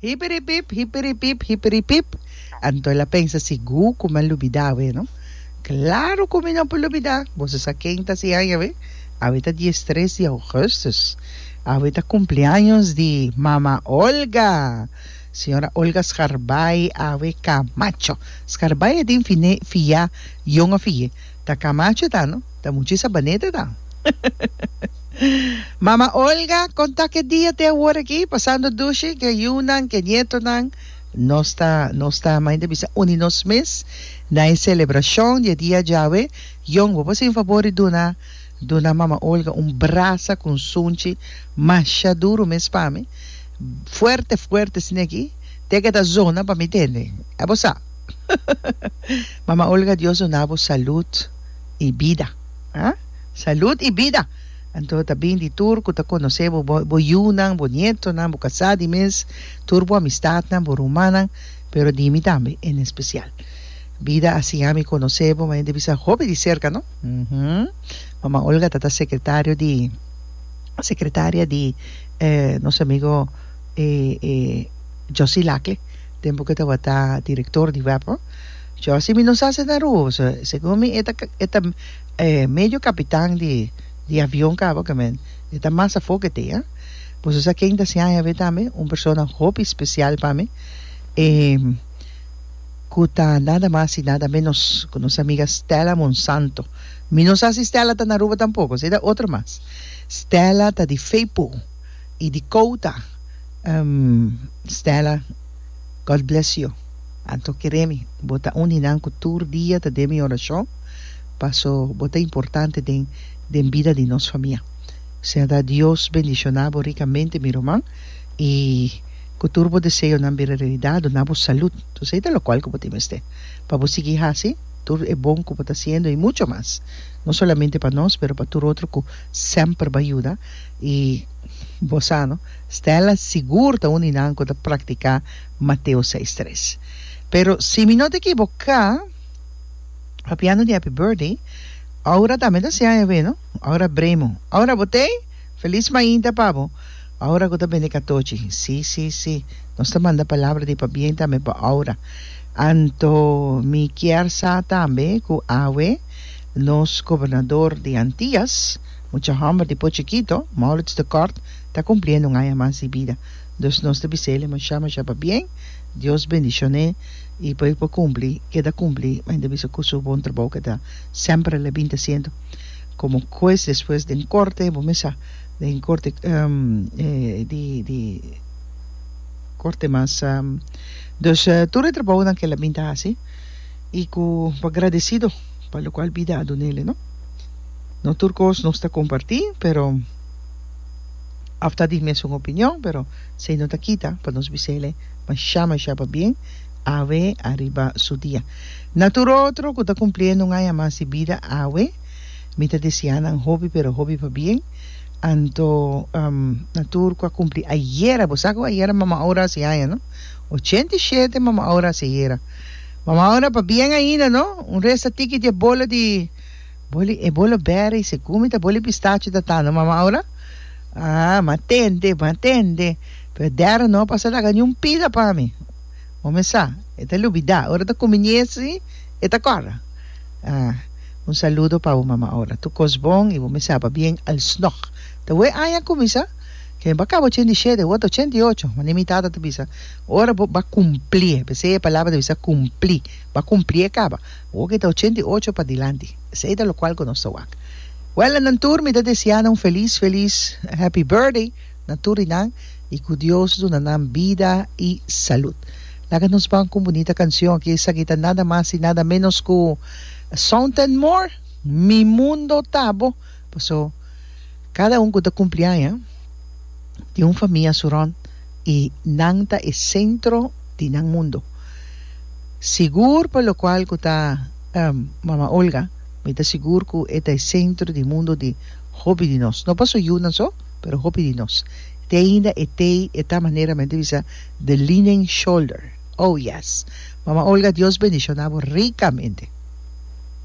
Hipiripip, hipiripip, hipiripip. Anto el a pensa, Sigur ku mi a lubidá awe, no? Klaru ku mi no por lubidá! Boso sa ken ta si haña awe? Awe ta di estres di ougùstùs. Awe ta kumpleaños di Mama Olga, Señora Olga Scharbay Awe Camacho. Scharbay a tin finé fiá, yon a fié. Ta camacho ta no ta muchi sabaneta ta. Mama Olga con ta que dia te awor aki pasando dushi que yunan que nietonan nos ta nos ta main ta bisa uni nos mes na e celebracion di e dia djawe yon bo por sin favor di duna duna mama Olga un brasa cu un sunchi masha duro mes pa mi fuerte fuerte sina aki te que ta zona pa mi tende a bo sa. Mama Olga Dios duna bo salud y bida ha salud y bida anto ta bin di tur cu ta conoce bo bo yunan bo nietonan bo casa di mes tur bo amistadnan bo rumannan pero di mi tambe en especial bida a siña mi conoce bo maya di bisa hopi di cerca no uhmm Mama Olga ta ta secretario di secretaria di nos amigo Josy Lacle. Tempu ke tabata direktor di Webpo, Josie mi no sa se ta rubo, pasobra segun mi e ta e ta medio kapitan di di avion kaba ke men e ta mas afó ke te. Boso sa ken ta siña hèber tambe? Un persona hopi spesial pa mi e ku ta nada mas i nada ménos ku nos amiga Stella Monsanto. Mi no sa si Stella ta na Aruba tampoko, si e ta otro mas. Stella ta di Feipo. y di Cota Stella God bless you Anto keremi bo ta un di nan cu tur dia ta den mi oracion paso bo ta importante den den bida di nos famia sea ta Dios bendiciona bo ricamente mi ruman y cu tur bo deseonan bira realidad duna bo salud su sa e ta locual cu bo tin mester pa bo sigui haci tur e bon cu bo ta haciendo y mucho mas no solamente pa nos pero pa tur otro cu semper bay yuda. I bo sa no, Stella sigur ta un di nan ku ta praktiká Mateo seis tres. Pero si mi no ta ekiboká, papia no di happy birthday, Aura tambe ta siña awé no, Aura Bremo. Aura bo t'ei? Felis mainta pa bo, Aura ku ta bende katochi. Sí, sí, sí, nos ta manda palabra di pabien tambe pa Aura. Anto mi kier sa tambe ku awe nos gobernador di Antias, Mucha hòmber di por chikito, Maurits de Kort, ta kumpliendo un aña mas di bida. Dus nos ta biséle mashá mashá pabien, Dios bendishon'é i p'e por kumpli ke ta kumpli. Mei ta bisa ku su bon trabou ke ta semper el a bin ta siendo komo hues despues den korte, bo mesa den korte di di korte mas. Dus tur e trabounan ke el a bin ta hasi i ku pa gradesido pa lokual bida a dun'é, no. No tur cos nos ta comparti, pero af ta di mesun opinion, pero esey no ta kita pa nos bisele masha masha pabien awe ariba su dia. Na tur otro cu ta cumpliendo un aña mas di bida awe, mi ta desea nan hopi pero hopi pabien. Anto um na tur cu a cumpli ayera, bo sa cu ayera Mama Aura a haci aña, no? Ochenta i shete Mama Aura a haci ayera. Mama Aura pabien ainda, no? Un resta tiki diabola di. Boli e bolo beri se gumi ta boli pistacho ta tando mama aura ah matende matende pero dera no pasa laga ni un pida pa mi momi sa e ta lubida ora ta kumi ni esi e ta kor ah un saludo pa bo mama aura tur kos bon y bo misa pa bien alsnog ta we aña kumi sa ke ba kaba ochenta y shete word ta ochenta y ocho wande mi tata ta bisa ora bo ba kumpli p'esei e palabra ta bisa kumpli ba kumpli e kaba. Hopi ta ochenta i ocho pa dilanti. Esei ta lokual ku nos ta wak. Wèl a nan tur mi ta deseá nan un felis felis happy birthday na tur di nan i ku Dios duna nan bida i salud. Laga nos ban ku un bunita kanshon aki esaki ta nada mas i nada ménos ku Sound and More Mi Mundo Ta Bo paso. Cada un cu ta cumpli aña tin un famia su rond y nan ta e centro di nan mundo. Sigur pa locual cu ta Mama Olga, mi ta sigur cu e ta e centro di mundo di hopi di nos. No pa su yu nan so, pero hopi di nos. Te ainda e tei e ta manera men ta bisa the linen shoulder. Oh yes! Mama Olga Dios bendiciona bo ricamente.